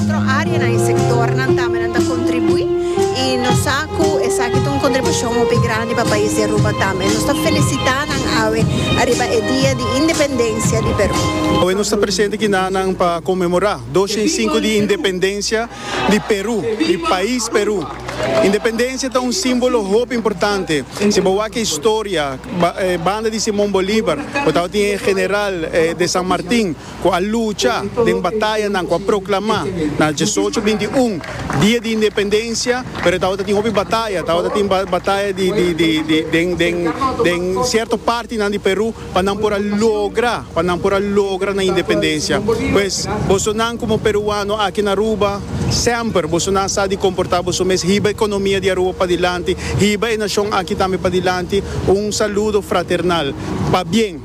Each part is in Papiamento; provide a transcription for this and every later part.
Otro áreanan i sektornan tambe nan ta kontribuí i nos sa ku esaki ta un kontribushon hopi grandi pa pais di Aruba tambe. Nos ta felisitá nan awe ariba e Dia di Independensia di Perú. Awe nos ta presente kina nan pa konmemorá dos shen i sinku di independensia di Perú, di pais Perú. Independensia ta un símbolo hopi importante. Si bo wak e historia, banda di Simon Bolívar, bo tabata tin e general de San Martin, ku a lucha den batayanan ku a proklamá na diesocho binti i un dia di independensia, pero e tabata tin hopi bataya, tabata tin bataya di den den den sierto partinan di Perú pa nan por a logra pa nan por a logra nan independensia. Pues bosonan komo peruano aki na Aruba semper bosonan sa di komportá boso mes hiba ekonomia di Aruba padilanti, hiba e nashon aki tambe padilanti. Un saludo fraternal. Pabien.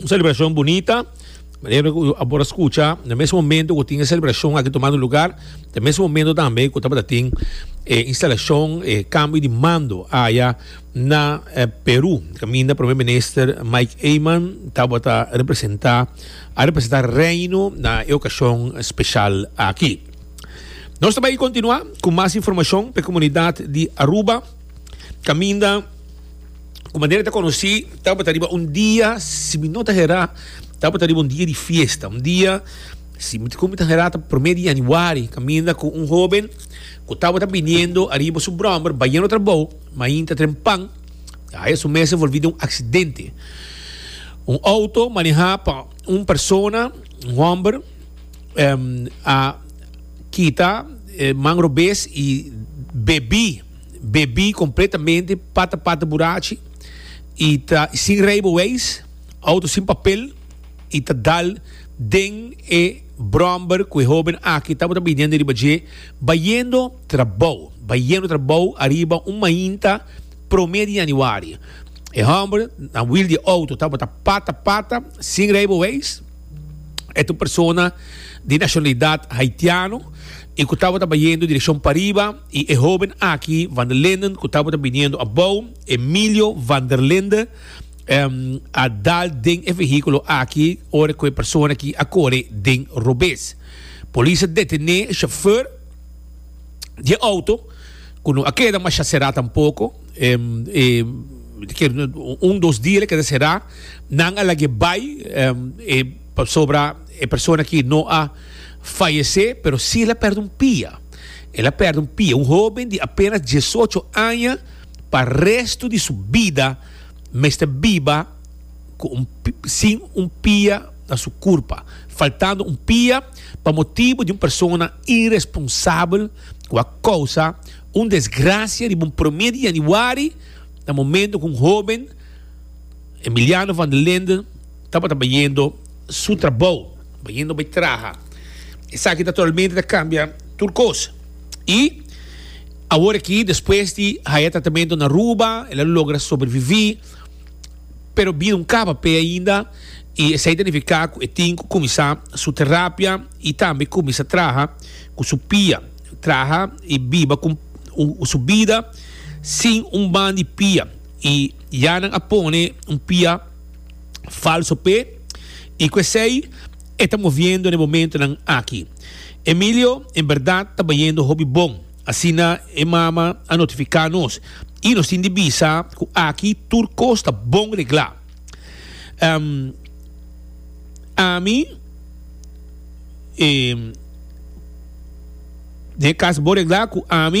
Un celebracion bunita, manera cu a por a scucha, na mes momento cu tin e celebracion aki tomando lugar, na mes momento tambe cu tabata tin e instalacion, e cambio di mando aya na eh, Peru. Caminda Prome Minister Mike Eman tabata representa, a representa Reino na e ocasion special aki. Nos ta bay continua cu mas informacion pa e comunidad di Aruba, caminda. Kuma Daniel ta konosí, tabata riba un dia, si mi no ta herá, tabata riba un dia di fiesta, un dia, si mi ta herá, ta promé di yanüari, kaminda ku un hóben ku tabata biniendo ariba su bròmber bayendo trabou, ma ainda ta tren pan, ta haya su mes envolví den un aksidente. Un outo manehá pa un persona, un hòmber, a kita man robes i bebí. Bebí kompletamente pata pata burachi i ta sin reibeweis, outo sin papel, i ta dal den e bromber ku e hóben aki tabata biniendo riba dje bayendo trabou, bayendo trabou ariba un mainta promé di yanüari. E hòmber na wiel di e outo tabata pata pata sin reibeweis, e ta un persona di nashonalidat haitiano i ku tabata bayendo direkshon pariba, Y e hoben aki, Van der Linden, cu tabata biniendo abou, Emilio Van der Linde, a dal den e vehiculo aki ora cu e persona aki a core den robes. Polis a detene e chauffeur di e auto, cu no a keda masha cera tampoco, un, dos dia el a keda cera, nan a lag'e bay, pasobra e persona aki no a fayece, pero si el a perde un pia. El a pèrdè un pia, un hóben di apénas diesocho aña pa restu di su bida mester biba ku un sin un pia na su kurpa, faltando un pia pa motibu di un persona iresponsabel ku a kousa un desgrasia riba un promé di yanüari na momentu ku un hóben, Emiliano van der Linde, Tabata bayendo su trabou, bayendo bay traha. Esaki naturalmente ta cambia tur cos. Y awor aki despues di haya tratamento na Aruba, el a logra sobrevivi, pero bida un caba p'e ainda y esey ta nifica cu e tin cu cuminsa su terapia y tambe cuminsa traha cu su pia, traha y biba cu un su bida sin un ban di pia y ya nan a pone un pia. falso pe y cu esey e ta moviendo na e momentonan aki. Emilio en berdad ta bayendo hopi bon, asina e mama a notifica nos y nos tin di bisa cu aki tur cos ta bon regla. Ehm, Ami, Ehm, den e cas bo regla cu ami.